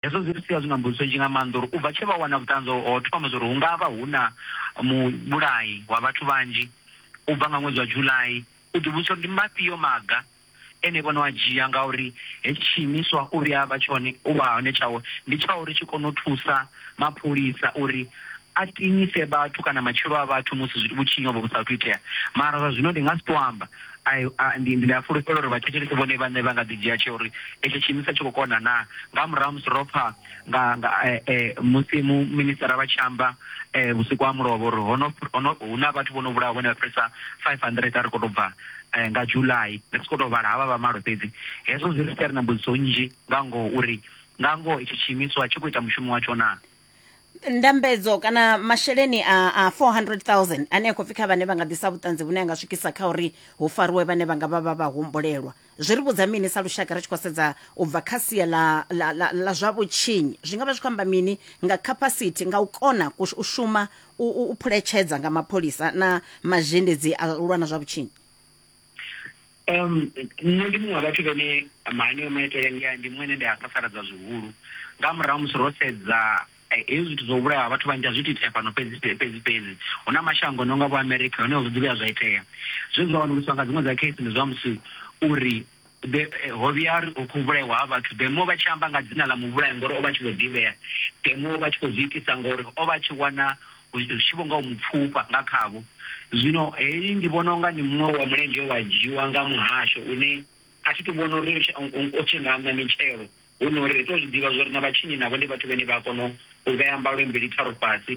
Hezwo zwi ri sia zwi na mbudziso nnzhi nga maanḓa uri u bva tshe vha wana vhuṱanzi ho thoma zwa uri hu nga vha hu na muvhulayi wa vhathu vhanzhi u bva nga ṅwedzi wa July, u ḓivhudzisa uri ndi mafhio maga ene vhone a dzhia ngauri hetshi tshiimiswa u vhuya a vha tshone u vha hone tshawe ndi tsha uri tshi kone u thusa mapholisa uri a tinyise vhathu kana matshilo a vhathu musi vhutshinyi hovho vhu sa athu itea mara zwa zwino ndi nga si tou amba. Ndi a fulufhela uri vhathetshelesi vhone vhaṋe vha nga ḓi dzhia tsheo uri etsho tshiimiswa tshi khou kona naa. Nga murahu ha musi ro pfa nga musi mu minisitara vha tshi amba vhusiku ha mulovha uri ho no ho no hu na vhathu vho no vhulawa vhane vha fhirisa 500 a ri khou tou bva nga July ri tshi khou tou vhala havha vha malo fhedzi. Hezwo zwi ri siela ri na mbudziso nnzhi nga ngoho uri nga ngoho etsho tshiimiswa tshi khou ita mushumo watsho naa. ndambedzo kana masheleni a, a 400000 ane a khou pfi kha vhane vha nga ḓisa vhuṱanzi vhune a nga swikisa kha uri hu fariwe vhane vha nga vha vha vha humbulelwa zwi ri vhudza mini sa lushaka ri tshi khou sedza u bva kha sia la, la, la, la zwa vhutshinyi zwi nga vha zwi khou amba mini nga capacity nga u kona ku- u shuma u, u, u phuletshedza nga mapholisa na mazhendedzi a u lwa na zwa vhutshinyi Um, nṋe ndi muṅwe wa vhathu vhane mahaneyo maitele ndi ndi muṅwe ene ndi a sasaladza zwihulu nga murahu musi ro sedza eh, hezwi zwithu zwo vhulaha vhathu vhanzhi a zwi titea fhano fhedzi fhedzi fhedzi hu na mashango no nga vho america hone zwi ḓivhuya zwa itea zwe zwa wanuluswa nga dziṅwe dza case ndi zwa musi uri Be, Ho vhuya ha ri hu khou vhulaiwa ha vhathu, be mo vha tshi amba nga dzina ḽa muvhulayi ngori o vha a tshi vho ḓivhea, be mo vha tshi khou zwi itisa ngori o vha a tshi wana hu tshi vho nga u mu pfufha nga khavho. Zwino heyi ndi vhona u nga ndi muṅwe wa mulenzhe we wa dzhiiwa nga muhasho une a thi tou vhona uri u tshi, u tshi nga ṋa mitshelo, hu nori ri tou zwi ḓivha zwa uri na vhatshinyi navho ndi vhathu vhane vha a kona u vhea mbalo mbili tharu fhasi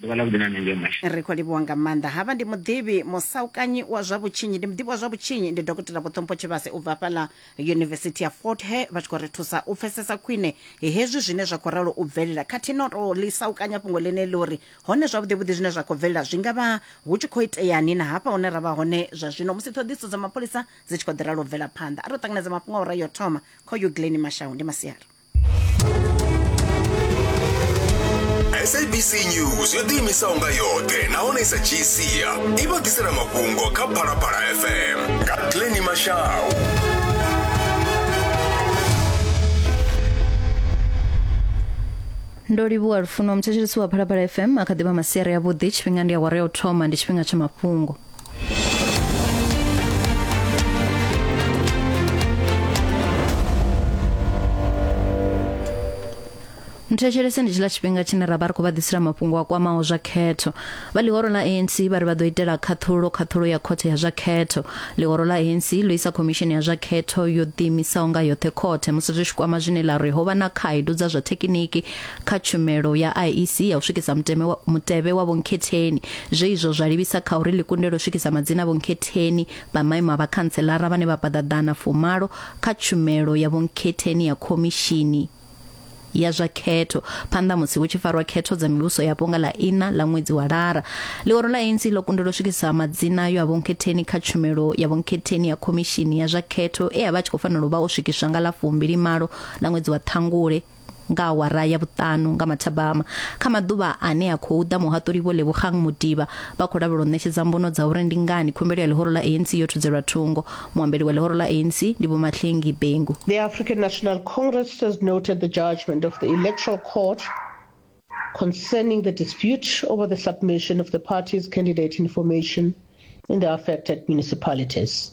ḓuvha ḽa vhuḓi na nṋe ngei mashe ri khou livhuwa nga maanḓa havha ndi muḓivhi musaukanyi wa zwa vhutshinyi ndi muḓivhi wa zwa vhutshinyi ndi dokotela vhuṱhompho tshivhase u bva fhaḽa yunivesithi ya fort he vha tshi khou ri thusa u pfesesa khwine hezwi zwine zwa khou ralo u bvelela khathihi no tou ḽi saukanya fhungo ḽine ḽi uri hone zwavhuḓivhuḓi zwine zwa khou bvelela zwi nga vha hu tshi khou iteani na hafha hune ra vha hone zwa zwino musi ṱhoḓiso dza mapholisa dzi tshi khou ḓi ralo u bvela phanḓa a ri u ṱanganedza mafhungo a ura yo thoma kha uyu glen mashau ndi masiari sabc news yo ḓiimisaho nga yoṱhe nahone i sa dzhii sia i vha ḓisela mafhungo kha phalaphala fm nga pleni mashau ndo livhuwa lufuno muthetshelesi wa phalaphala fm a kha ḓivha masiari avhuḓi tshifhinga ndi awara ya u thoma ndi tshifhinga tsha mafhungo thetshelese ndi tshiḽa tshifhinga tshine ra vha ri khou vha ḓisela mafhungo a kwamaho zwa khetho vha ḽihoro ḽa anc vha ri vha ḓo itela khaṱhulo khaṱhulo ya khothe ya zwa khetho ḽihoro ḽa anc ḽo isa khomishini ya zwa khetho yo ḓiimisaho nga yoṱhe khothe musi zwi tshi kwama zwine ḽa ri ho vha na khaedu dza zwa thekiniki kha tshumelo ya IEC ya u swikisa muteme wa, mutevhe wa vhonkhetheni zwe izwo zwa livhisa kha uri ḽi kundelwe u swikisa madzina a vhonkhetheni vha maimo a vhakhantselara vhane vha paḓa ḓana fumalo kha tshumelo ya vhonkhetheni ya khomishini ya zwa khetho phanḓa musi hu tshi farwa khetho dza mivhuso yapo nga ḽa ina ḽa ṅwedzi wa lara ḽiworo ḽa ANC ḽo kundelwa u swikisa madzina ayo a vhonkhetheni kha tshumelo ya vhonkhetheni ya khomishini ya zwa khetho e a vha a tshi khou fanela u vha o swikiswa nga ḽa fumbili malo ḽa ṅwedzi wa ṱhangule nga awara ya vhuṱanu nga mathabama kha maḓuvha ane a khou ḓa muhaṱuli vho lebogang mudiba vha khou lavhelwa u ṋetshedza mbono dza uri ndi ngani khumbelo ya ḽihoro ḽa anc yo thudzelwa thungo muambeli wa ḽihoro ḽa anc ndi vho mahlengi bengu The African National Congress has noted the judgment of the Electoral Court concerning the dispute over the submission of the party's candidate information in the affected municipalities.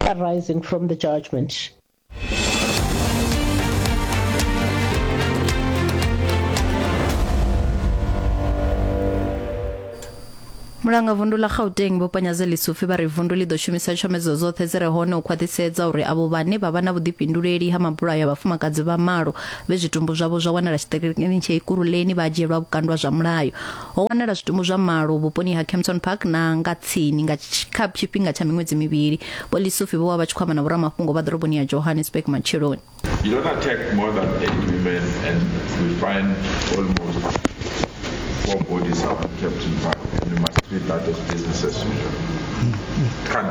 arising from the judgment. mulanga vundu ḽa gauteng vho panyadze lisufi vha ri vundu ḽi ḓo shumisa tshomedzo dzoṱhe dzi re hone u khwaṱhisedza uri avho vhane vha vha na vhuḓifhinduleli ha mabulayo a vhafumakadzi vha malo vhe zwitumbu zwavho zwa wanala tshiṱirikini tsha ikuruleni vha dzhielwa vhukandwa zwa mulayo Ho wanala zwitumbu zwa malo vhuponi ha Kempton Park na nga tsini nga tshi- kha tshifhinga tsha miṅwedzi mivhili. Vho Lisufi vho vha vha tshi khou amba na vhoramafhungo vha ḓoroboni ya Johannesburg matsheloni. You don't attack more than eight women, and we find almost four bodies up in Captain Park, and we must treat that as business as usual. Can't.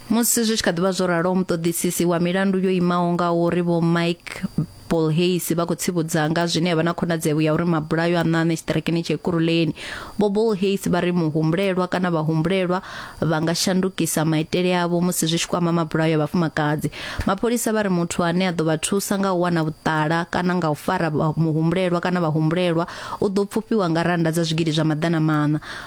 Musi zwi tshi kha ḓi vha zwo ralo, muṱoḓisisi wa milandu yo imaho nga uri Vho Mike Paul Hayes vha khou tsivhudza nga zwine ya vha na khonadzeo ya uri mabulayo a ṋaṋe tshiṱirakini tsha Ekurhuleni. Vho Paul Hayes vha ri muhumbulelwa kana vhahumbulelwa vha nga shandukisa maitele avho musi zwi tshi kwama mabulayo a vhafumakadzi. Mapholisa vha ri muthu ane a ḓo vha thusa nga u wana vhuṱala kana nga u fara muhumbulelwa kana vhahumbulelwa u ḓo pfufhiwa nga rannda dza zwigidi zwa maḓana maṋa.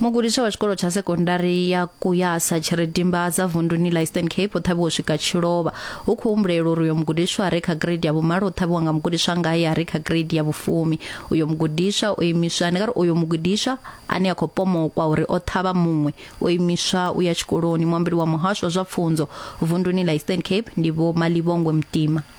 mugudiswa wa tshikolo tsha sekondari ya kuyasa tshiridimba dza vunduni la eastern cape o ṱhavhiwa u swika tshilovha hu khou humbulela uri uyo mugudiswa a re kha grade ya vhumalo o ṱhavhiwa nga mugudiswa ngae a re kha grade ya vhufumi uyo mugudiswa o imiswa ndi nga ri uyo mugudiswa ane a khou pomokwa uri o ṱhavha muṅwe o imiswa u ya tshikoloni muambeli wa muhasho wa zwa pfunzo vunduni la eastern cape ndi vho malivhongwe mutima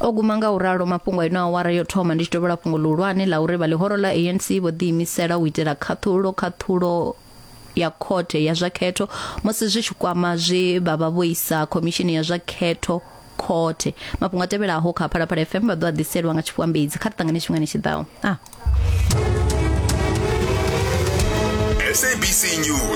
o guma nga u ralo mafhungo a ino awara yo thoma ndi tshi tovhola fhungo ḽihulwane ḽa uri vha ḽihoro ḽa anc vho ḓiimisela u itela khaṱhulo khaṱhulo ya khothe ya zwa khetho musi zwi tshi kwama zwe vha vha vho isa khomishini ya zwa khetho khothe mafhungo a tevhelaho kha phalaphala fm vha ḓo a ḓiselwa nga tshifhambedzi kha ri ṱangane tshifhingani tshi ḓaho a ah. SABC News.